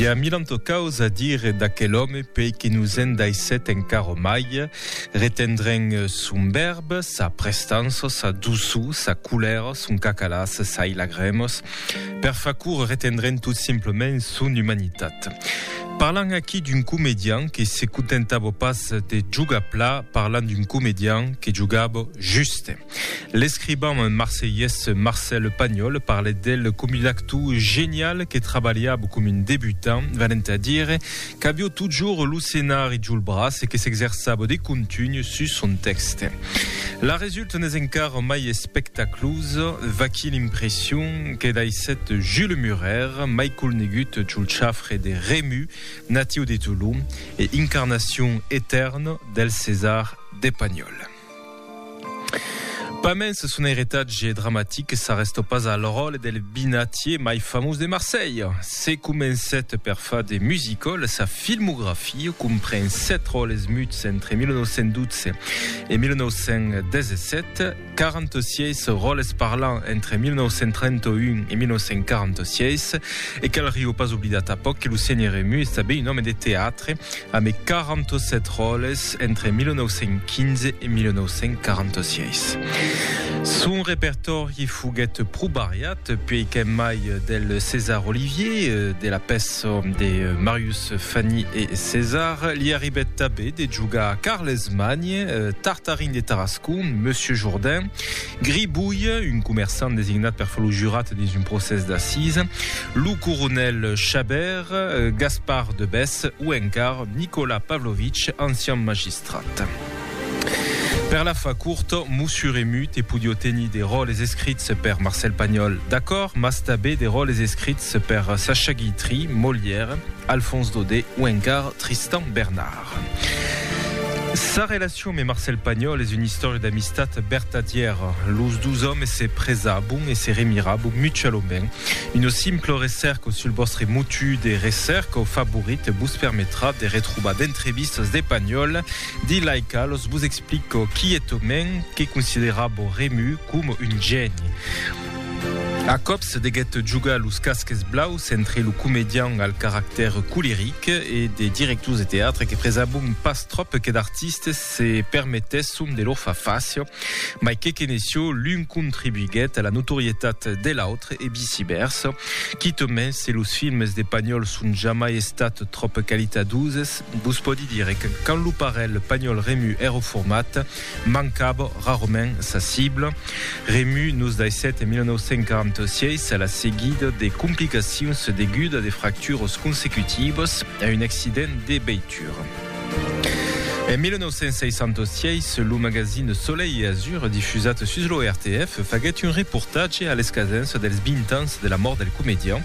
I a milan tocaus a dire d'aquel òme pei que nos en daissèt encara mai, retendrèn son vèrb, sa prestança, sa doçor, sa colèra, son cacalàs, sai lagrèmas, per far curt retendrèn tot simplament son umanitat. Parlan aquí d'un comedian que se contentava pas de jogar plat, parlan d'un comedian que jogava juste. L'escriban marselhés Marcel Pagnol parlèt d'el com un actou genial que trabalhava com un debutant, venent a dire qu'avió totjorn lo senari jol braç e que s'exerçava de contunh sus son tèxte. La resulta n'es encara mai espectaclosa, vaquí l'impression que daissèt Jules Murer, mai colnegut jol chafre de Remu, natiu de Tolon e incarnacion etèrna del César de Pagnol. Pas mens son eretatge dramatic s'arrèsta pas al ròtle del binatier mai famós de Marselha. Se comencèt per far de musical, sa filmografia compren sèt ròtles muts entre 1912 e 1917, 46 ròtles parlants entre 1931 e 1946 e cal riu pas oblidar tanpòc que lo Senhor Emu es tanben un òme de teatre, Amb 47 ròles entre 1915 e 1946. Son repertòri foguèt pro variat, puèi qu'en mai del César Olivier, de la pèça de Marius Fanny e César, li arribèt tanben de jogar Carles Magne, Tartarin de Tarascon, Monsieur Jourdain, Gribouille, un comerçant designat per far lo jurat dins un procès d'assisa, lo coronèl Chabert, Gaspard de Bès o encara Nicolas Pavlovich, ancian magistrat. Per la far curta, Mossur e Mut e podió tenir de ròles escrits per Marcèl Pagnòl, d'acòrd, mas tabé de ròles escrits per Sacha Guitry, Molière, Alfons Daudet o encara Tristan Bernard. Sa relacion me Marcel Pagnol es una istòria d'amistat vertadièra. Los dus òmes se presabon e se remirabon mutualament. Una simpla recèrca sul vòstre motiu de recèrca favorit vos permetrà de retrobar d'entrevistas de Pagnol dins lai qualas vos explica quietament que considerava Rému coma un gèni. A còps deguèt jogar los casques blaus entre lo comedian al caractèr coleric e de directors de teatre que presabon pas tròp que d'artistes se permetèsson de lor far fàcia, mai que qu'ene çò l'un contribuiguèt a la notorietat de l'autre e vicivèrsa. Quitament se los films de Pagnòl son jamai estats tròp qualitatoses, vos pòdi dire que quand lo parelh Pagnòl-Rému èra format, Mancava rarament sa cibla. Remu nos daissèt en 1946, a la seguida de complicacions deguda de fracturas consecutivas a un accident de veitura. En 1966, lo magazine Soleil et Azur, difusat sus lo RTF, faguèt un reportatge a l'escasença dels 20 ans de la mòrt del comedian.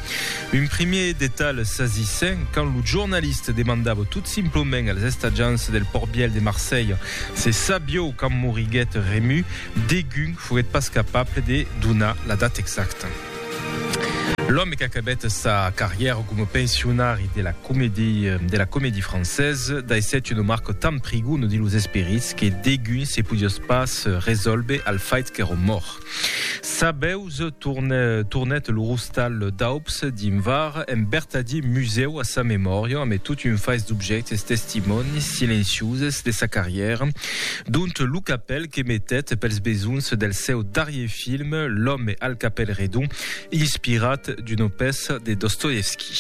Un primièr detalh sasissent, quand lo jornaliste demandava tot simplement als estatjants del Pòrt Vièlh de Marselha se sabieu quand moriguèt Rému, degun foguèt pas capable de donar la data exacta. L'òme qu'acabèt sa carrièra coma pensionari de la Comédie, de la Comédie Française, daissèt una marca tan prigona dins los esperits que degun se podiás pas resòlver al faict qu'èra mòrt. Sabeus tornèt lo rostal d'aups dins var en bertadi musèu a sa memòria amé tot un fais d'objèctes testimònis silencioses de sa carrièra dont lo capèl que metèt pels besonhs del seu darrier film L'homme al capèl redon inspirat d'una pèça de Dostoevski.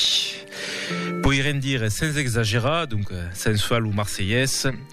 Poirem dire sens exagerar, donc sens far lo marselhés,